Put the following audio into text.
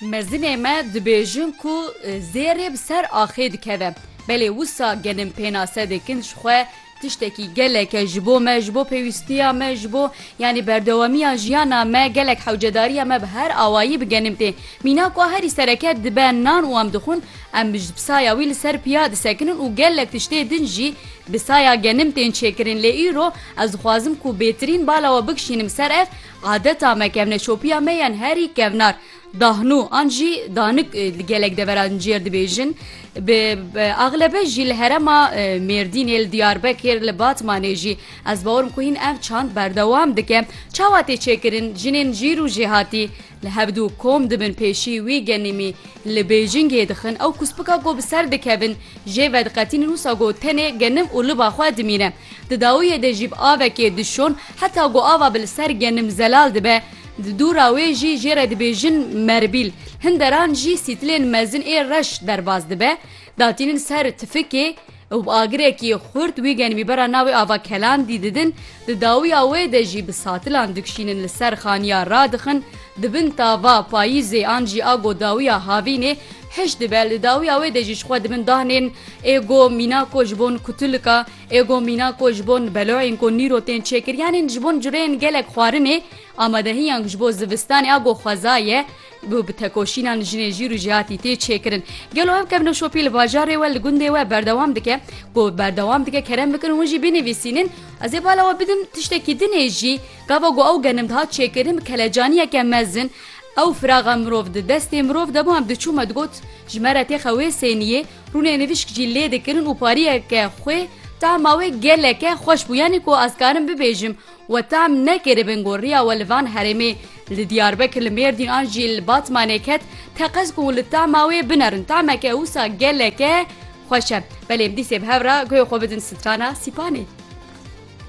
Mezinê me dibêjin ku zêrê bi ser axê dikeve. Belê wisa genim pênase dikin ji xwe tiştekî geleke ji bo me, ji bo pêwîstiya me, ji bo yanî berdewamiya jiyana me gelek hewcedariya me bi her awayî bi genim tê. Mîna ku herî sereke dibe nan û em dixwin em ji bi saya wî li ser piya disekinin û gelek tiştê din jî bi saya genim tên çêkirin lê îro ez dixwazim ku bêtirîn bala we bikişînim ser ev Adeta me kevneşopiya me yên herî kevnar, dahnû an jî danik li gelek deveran cêr dibêjin. Bi axlebe jî li herema Mêrdînê, li Diyarbekir, li Batmanê jî. Ez bawer im ku hîn ev çand berdewam dike. Çawa tê çêkirin? Jinên jîr û jêhatî li hevdu kom dibin pêşî wî genîmî li Bêjingê dixin. Ew kuspika ku bi ser dikevin jê vediqetînin wisa ku tenê genim û liba xwe dimîne. Di dawiyê de jî bi avekê dişon heta ku ava bi li ser genim zelal dibe. Di dûra wê jî jê re dibêjin merbîl. Hin deran jî sîtilên mezin ê reş derbas dibe, datînin ser tifikê û bi agirekî xurt wî genimî bera navê ava Kelandî didin. Di dawiya wê de jî bi satilan dikşînin li ser xaniya radixin. Di bin tava Payîzê an jî a ku dawiya havînê Hişt dibe li dawiya wê de jî ji xwe di bin dahnên êgo mîna ku ji bon kutulika, êgo mîna ku ji bon beloyên ku nîro tên çêkir yanên ji bon cureyên gelek xwarinê amadehiyan ji bo zivistanê a ku xweza ye û bi tekoşînan jinê jîr û jihatî tê çêkirin. Gelo ev kevnoşopî li bajarê we li gundê we berdewam dike ku berdewam dike kerem bikin hûn jî binivîsînin ez ê bala we bidim tiştekî dinê jî gava ku ew genim dihat çêkirin bi kelecaniyeke mezin Ew firaxa mirov di destê mirov de bû em diçû me digot ji me re tê xewê sêniyê rûnê nivîşk jî lê dikirin û pariyeke xwê tahma wê geleke xweş bû yanî ku ez karim bibêjim we tahm nekiribin ku riya we li van herêmê li diyarbekir li mêrdîn an jî li batmanê ket teqez ku li tahma wê binerin tahmeke wisa geleke xweş e belê em dîsê bi hev re guhê xwe bidin strana sîpanê.